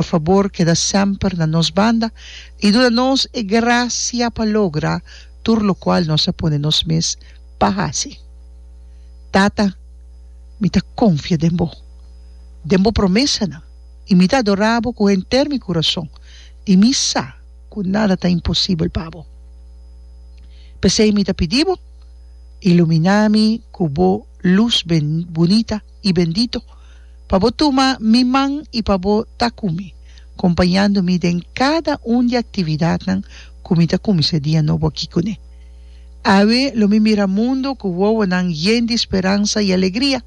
Por fabor keda semper na nos banda i duna nos e grasia pa logra tur lokual nos a pone nos mes pa hasi. Tata, mi ta konfia den bo, den bo promesanan i mi ta adorá bo ku henter mi kurason i mi sa ku nada ta imposibel pa bo. P'esei mi ta pidi bo, iluminá mi ku bo lus bunita. i bendito, pa bo tuma mi man i pa bo ta ku mi, kompañando mi den kada un di aktividatnan ku mi ta kuminsá dia nobo aki kuné. Awe lo mi mira mundu ku wowonan yen di speransa i alegria,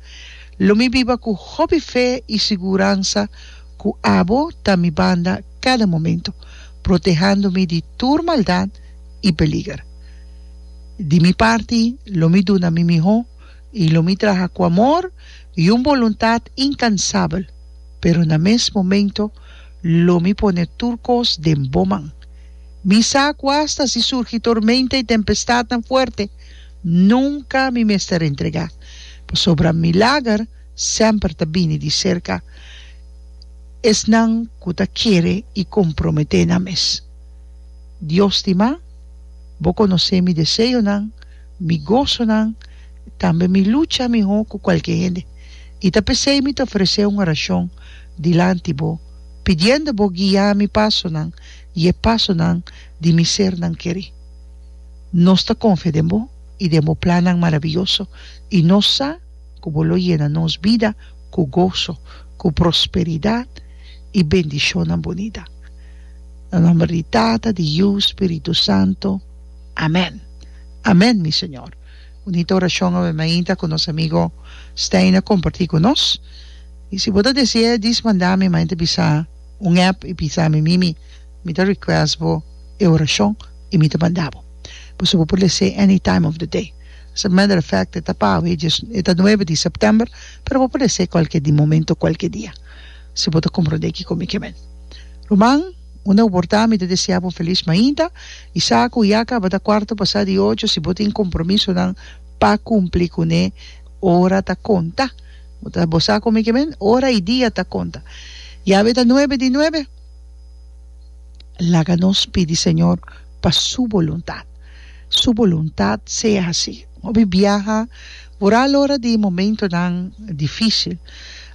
lo mi biba ku hopi fe i siguransa ku abo ta mi banda kada momentu, protehando mi di tur maldat i peliger. Di mi parti, lo mi duna mi mihó. I lo mi traha ku amor i un boluntat inkansabel, pero na mes momento lo mi pone tur kos den bo man. Mi sa ku asta si surgi tormenta i tempestadnan fuerte, nunka mi mester entregá, pasobra milager semper ta bini di serka esnan ku ta kere i komprometé nan mes. Dios di man, bo konosé mi deseonan. Mi gosonan, tambe mi lucha miho ku kualke hende, i ta p'esei mi ta ofresé un orashon dilanti bo, pidiendo bo guiá mi pasonan i e pasonan di mi sernan kerí. Nos ta konfia den bo i den bo plannan maravioso, i nos sa ku bo lo yena nos bida ku goso, ku prosperidat i bendishonnan bunita. Na nòmber di Tata, di Yu, Spiritu Santo. Amen Amen mi Señor. Bunito oracion awe mainta cu nos amigo Stijn a comparti cu nos. Y si bo ta desea dis mandami mainta bisa un app y bisami mimi mi ta request bo e oracion y mi ta manda bo. Paso bo por lese any time of the day. As a matter of fact e ta pawe e ta nuebe di September pero bo por lese cualkier di momento cualkier dia si bo ta comprende kico mi ke men. Ruman. Unda bo por ta mi ta desea bo felis mainta y sa cu ya caba ta cuarto pasa di ocho si bo tin compromisonan pa cumpli cu ne ora ta conta bo ta bo sa como ki'e men ora y dia ta conta ya awe ta nuebe di nuebe laga nos pidi Señor pa su boluntad su boluntad sea haci hopi biaha bo ra alora di momentonan dificil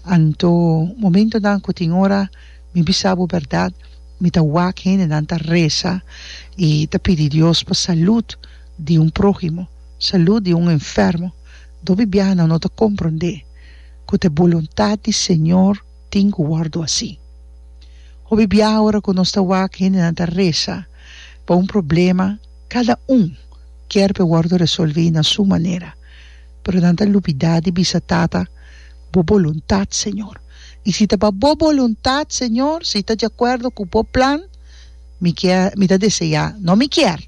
anto momentonan cu tin ora. Mi bisa bo bèrdat, mi ta wak hendenan ta resa i ta pidi Dios pa salùt di un próhimo, salùt di un enfermo. Dop'i biaha nan no ta komprondé ku ta e boluntat di Señor tin ku wòrdu así. Hopi biaha ora ku nos ta wak hendenan ta resa pa un problema, kada un kier pa e wòrdu resolví na su manera, pero nan ta lubidá di bisa, Tata, bo boluntat, Señor. I si ta pa bo boluntat, Señor, si ta diacuerdo cu bo plan, mi kier, mi ta deseá, no mi kier,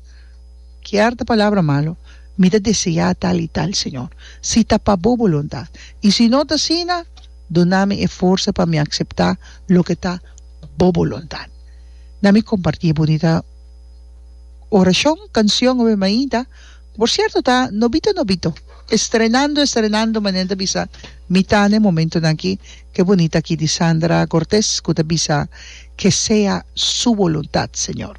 kier ta palabra malo, mi ta deseá tal i tal, Señor, si ta pa bo boluntat. I si no ta asina, duna mi e forsa pa mi aceptá loke ta bo boluntat. Na mi compartí e bunita oracion, cancion, hopi mainta. Por cierto ta nobito nobito. Estrenando estrenando manera ta bisa mi ta na e momentonan aki ke bonita aki di Sandra Cortes ku ta bisa, Que sea su voluntad Señor.